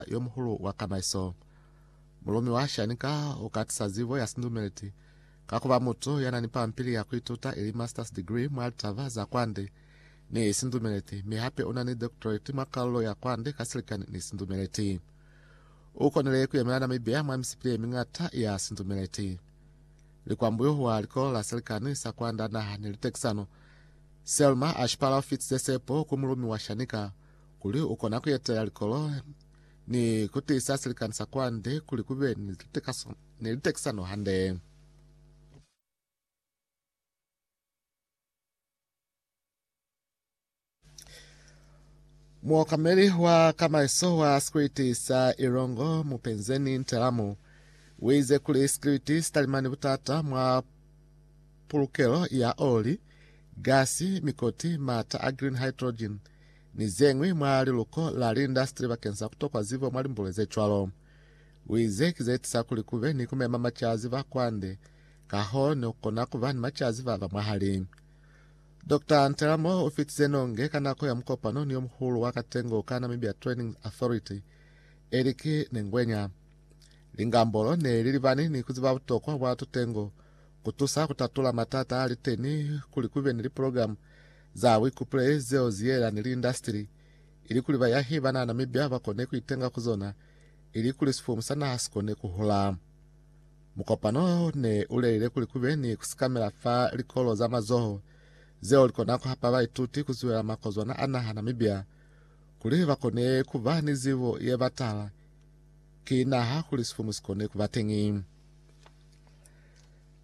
yo muhulu wa kamaiso. Mulumi wa Shanika u ka tisa zibo ya sindumeleti ka ku ba mutu ya na ni pampili ya ku ituta ili master's degree mwa litaba za kwande ni sindumeleti, mi hape u na ni doctorate mwa kalulo ya kwande ka silikani ni sindumeleti. U konile ku yemela Namibia mwa misipili ye miñata ya sindumeleti. Likwambuyu wa likolo la silikani sa kwanda naha ni litekisano, Selma a shipala u fitize sepo ku mulumi wa Shanika kuli u kona ku etela likolo ni ku tiisa silikani sa kwande kuli ku be ni litekaso ni litekisano hande. Muokameli wa kamaiso wa sikwiti sa Ilongo Mupenzeni Ntelamu uize kuli sikwiti sitalimani butata mwa pulukelo ya oli, gasi, mikoti, mata a green hydrogen, ni zeñwi mwa liluko la liindastri bakeng sa kutokwa zibo mwa limbule zecwalo. Uize ki zeetisa kuli kube ni kumema macaziba kwande, kahoo ne kukona kuba ni macaziba ba mwahali. Doctor Nteramoro ufitize nonge ka nako ya mukopano ni yomuhulu wa katengo ka Namibia Training Authority, eli ki ne ngwenya, Lingambolo ne li libani ni kuziba butokwa bwa tutengo kutusa kutatula matata aliteni kuli kube ni liprogramu za buikupule zeo ziyela ni liindastili, ilikuli bayahi banana mibya bakone kuitenga ku zona, ilikuli sifumu sa naha sikone kuhula. Mukopano wo ne uleile kuli kube ni kusikamela fa likolo za mazoho, zeo likona kuhapa baituti kuzuhela makozwana a naha Namibia, kuli bakone kuba ni zibo yebatala ki naha kuli sifumu sikone kubateñi.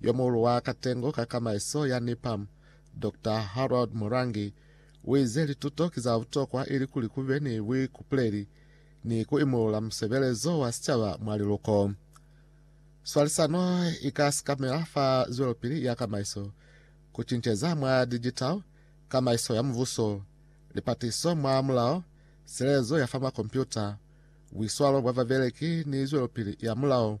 Yomuhulu wa katengo ka kamaiso ya NIPAM, Doctor Harold Murangi, uize lituto ki za butokwa ilikuli kube ni buikupuleli ni ku imulula musebelezo wa sicaba mwa liluko. Swalisano ika sikamela fa zwelopili ya kamaiso, kucinceza mwa digital, kamaiso ya mubuso, lipatiso mwa mulao, silelezo ya fa makompyuta, buiswalo bwa babeleki ni zwelopili ya mulao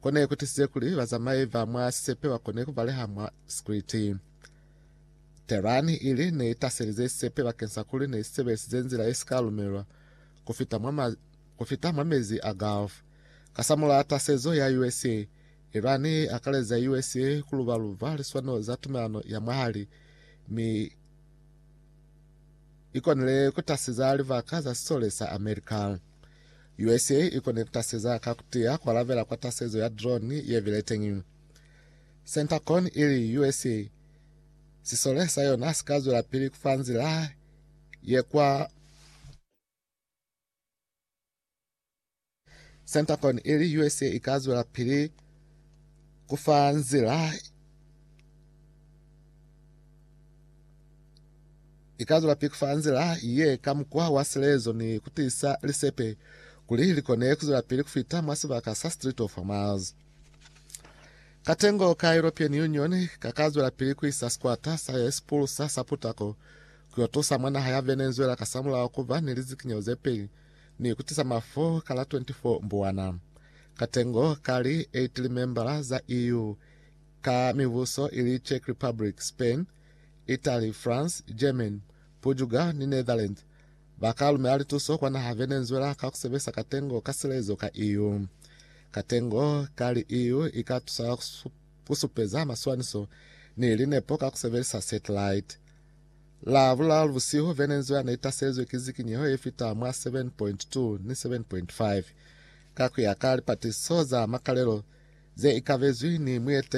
Ko ne ku tisize kuli bazamai ba mwa sisepe ba kone ku baleha mwa sikriti. Tehran ili ne i taselize sisepe bakeng sa kuli ne si sebelisize nzila ye si ka lumelwa ku fita mwa ma, ku fita mwa mezi a Gulf. Kasamul'a tasezo ya USA, Iran i akaleza USA ku luba-luba liswanelo za tumelano ya mwahali, mi i konile ku tasiza libaka za sisole sa America. USA i kone kutaseza ka kutiya kualabela kwa tasezo ya drone yebile teñi. Centacon ili USA sisole sa yona sika zwelapili kufa nzila ye kwa Centacon ili USA i ka zwela pili kufa nzila I ka zula pili fa nzila ye ka mukwa wa silezo ni ku tiisa lisepe kuli li kone ku zwela pili ku fita mwa sibaka sa Strait of Hormuz. Katengo ka European Union ka ka zwela pili ku isa sikwata sa ye si pulusa sa putako ku yo tusa mwa naha ya Venezuela kasamulaho ku ba ni lizikinyeho ze peli ni ku tisa mafu ka la 24 Mbuwana. Katengo ka li 8 limembala za EU ka mibuso ili Czech Republic, Spain, Italy, France, Germany, Portugal ni Netherlands, ba ka lumela lituso kwa naha Venezuela ka ku sebelisa katengo ka silezo ka EU. Katengo ka li EU i ka tusa ku supeza maswaniso ni linepo ka ku sebelisa satellite. Lavulalu busihu, Venezuela ne i taselizwe ki zikinyeho ye fita mwa 7.2 ni 7.5, ka ku ya ka lipatisiso za makalelo ze ikabezwi ni mueteleli wa National Security Council.